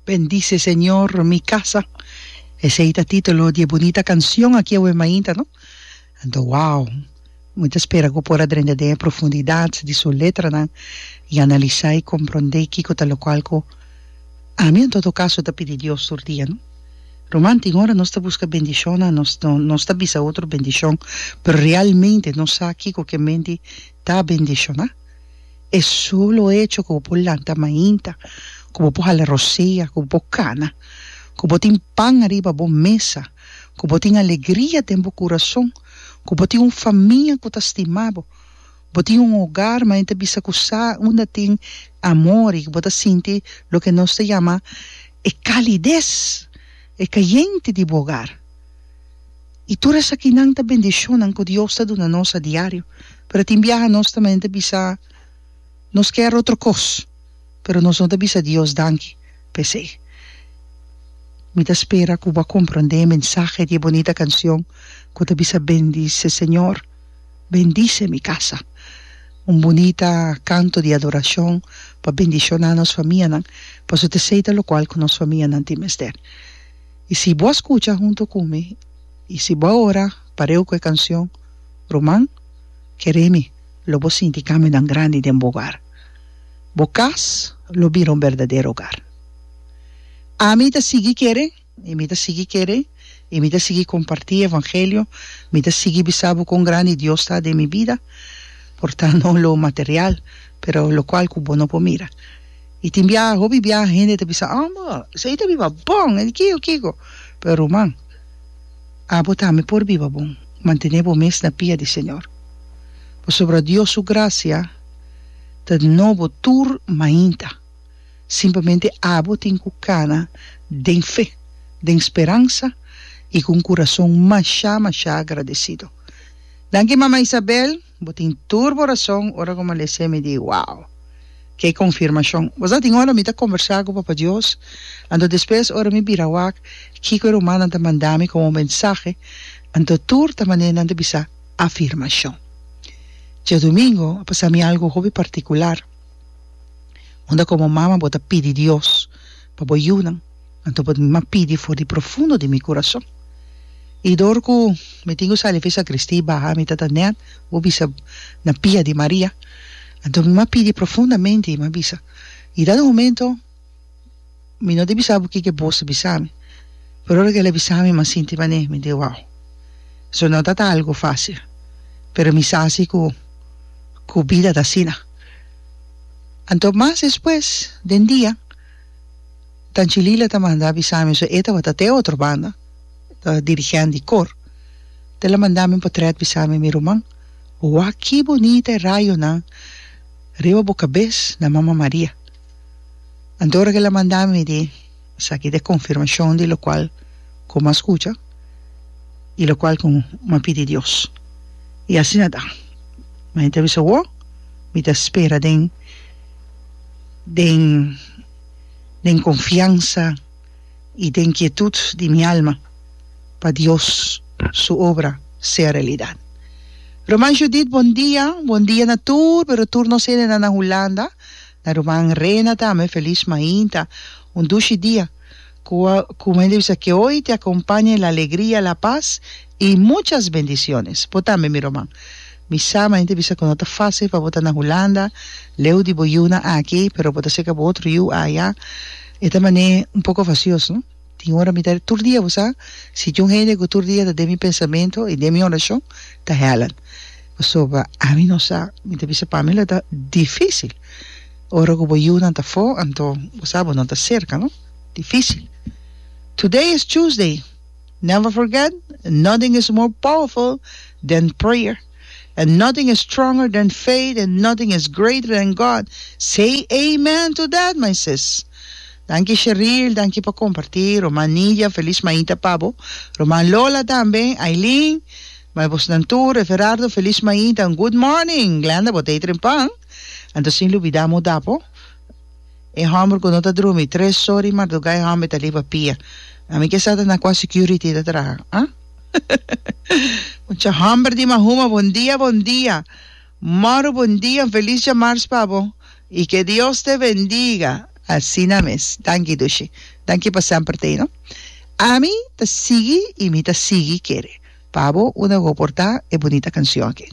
Bendice Señor mi casa esey ta titulo di e bunita cancion aki awe mainta no anto wow mi ta spera cu por a drenta den e profundidad di su letranan y analisa y compronde kico ta locual cu ami en todo caso ta pidi Dios tur dia no ruman tin ora nos ta busca bendicionnan nos nos ta bisa otro bendicion pero realmente nos sa kico ke menti ta bendiciona. E solo echo ku bo por lanta mainta, ku bo por hala rosea, ku bo por kana, ku bo tin pan ariba bo mesa, ku bo tin alegria den bo kurason, ku bo tin un famia ku ta stima bo, bo tin un ogar manera ta bisa ku sa unda tin amor i ku bo ta sinti loke nos ta yama e kalides, e kayente di bo ogar. I tur esakinan ta bendishonnan ku Dios ta duna nos a diario. Pero tin biaha nos ta manera ta bisa nos kèr otro kos, pero nos no ta bisa Dios danki. P'esei mi ta spera ku bo a komprondé e mensahe di e bonita kanshon ku ta bisa Bendice, Señor, bendice mi casa. Un bonita kanto di adorashon pa bendishoná nos famianan, pasobra t'esei ta lokual ku nos famianan tin mester. I si bo a skucha huntu ku mi, i si bo a ora pareu ku e kanshon, ruman, kere mi, lo bo sinti kambionan grandi den bo ogar. Bo kas lo bira un berdadero ogar. Ami ta sigui kere, i mi ta sigui kere, i mi ta sigui kompartí e evangelio, mi ta sigui bisa bo kon grandi Dios ta den mi bida, por ta no lo material, pero lokual ku bo no por mira. Y tin biaha, hopi biaha hende ta bisa, Oh, bo, esei ta biba bon, e di kiko, kiko. Pero ruman, abo tambe por biba bon, mantené bo mes na pia di Señor. Pasobra Dios su gracia ta dnó bo tur mainta. Simplemente abo tin cu cana den fe, den speransa y cu un curason mashá, mashá agradecido. Danki, Mama Isabel. Bo tin tur bo rason ora ku Malesé mi di, Wow! Ke konfirmashon! Bo sa tin ora mi ta kombersá ku Papa Dios, anto despues ora mi bira wak kiko e rumannan ta manda mi komo mensahe, anto tur ta mané nan ta bisa afirmashon. Diadumingu a pasa mi algu hopi partikular, unda komo mama bo ta pidi Dios pa bo yunan. Anto por mi a pidi for di profundo di mi kurason. I dor ku mi tin ku sali fi sakristi i baha mi tata nèt bo bisa na pia di Maria. Anto mi a pidi profundamente i mi a bisa, i dado momento mi no ta bisa bo kiko e bos ta bisa mi, pero ora ku el a bisa mi mi a sinti manera mi di wow. So no tabata algu fasil pero mi sa si ku ku bida ta asina. Anto mas despues den dia ta Djilila ta manda a bisa mi so e tabata te otro banda ta dirigent di cor te la manda mi potret bisa mi mi ruman wa ki bonita e rayonan riba bo cabes na mama Maria anto ora ke la manda mi di esaki ta e confirmacion di locual cu mi a scucha y locual cu mi a pidi Dios y asina ta mi ta bisa wo mi ta spera den den den confiansa y den quietud di mi alma pa Dios su obra sea realidad. Ruman Judith bon dia, bon dia na tur, pero tur nos hende nan na Hulanda, na ruman Rena tambe feliz mainta, un dushi dia. Cua cu me disa que hoy te acompañe la alegría, la paz y muchas bendiciones. Bo tambe, mi roman. Mi sa manain ta bisa cu no ta facil pa bo ta na Hulanda, leu di bo yiu nan aki, pero bo ta cerca bo otro yiu aya. E ta manain un poco vacioso, no? Tin ora mi ta, tur dia bo sa, si tin un hende cu tur dia ta den mi pensamento y den mi oracion, ta Helen. Pasobra ami no sa, mi ta bisa pami lo ta dificil ora cu bo yiunan ta afo, anto bo sa bo no ta cerca, no? Difícil. Today is Tuesday. Never forget, nothing is more powerful than prayer, and nothing is stronger than faith, and nothing is greater than God. Say amen to that my sis. Danki Sheril, danki pa comparti, Roman Nidia, Feliz Maita pa bo, Roman Lola tambe, Ailin, my bos nan tur, Everardo, Feliz Maita, and Good morning Glenda, bo ta eet rempan, anto sin lubida amo dapo. E homber cu no ta drumi tres or di marduga e homber ta liba pia a mi kesa ta na cua security ta traha ah mucha homber di mahuma bon dia bon dia moro bon dia un feliz dia mars pa bo y que Dios te bendiga asina mes danki dushi danki pa semper ta ino ami ta sigui y mi ta sigui kere pa bo una go por ta e bunita cancion aki.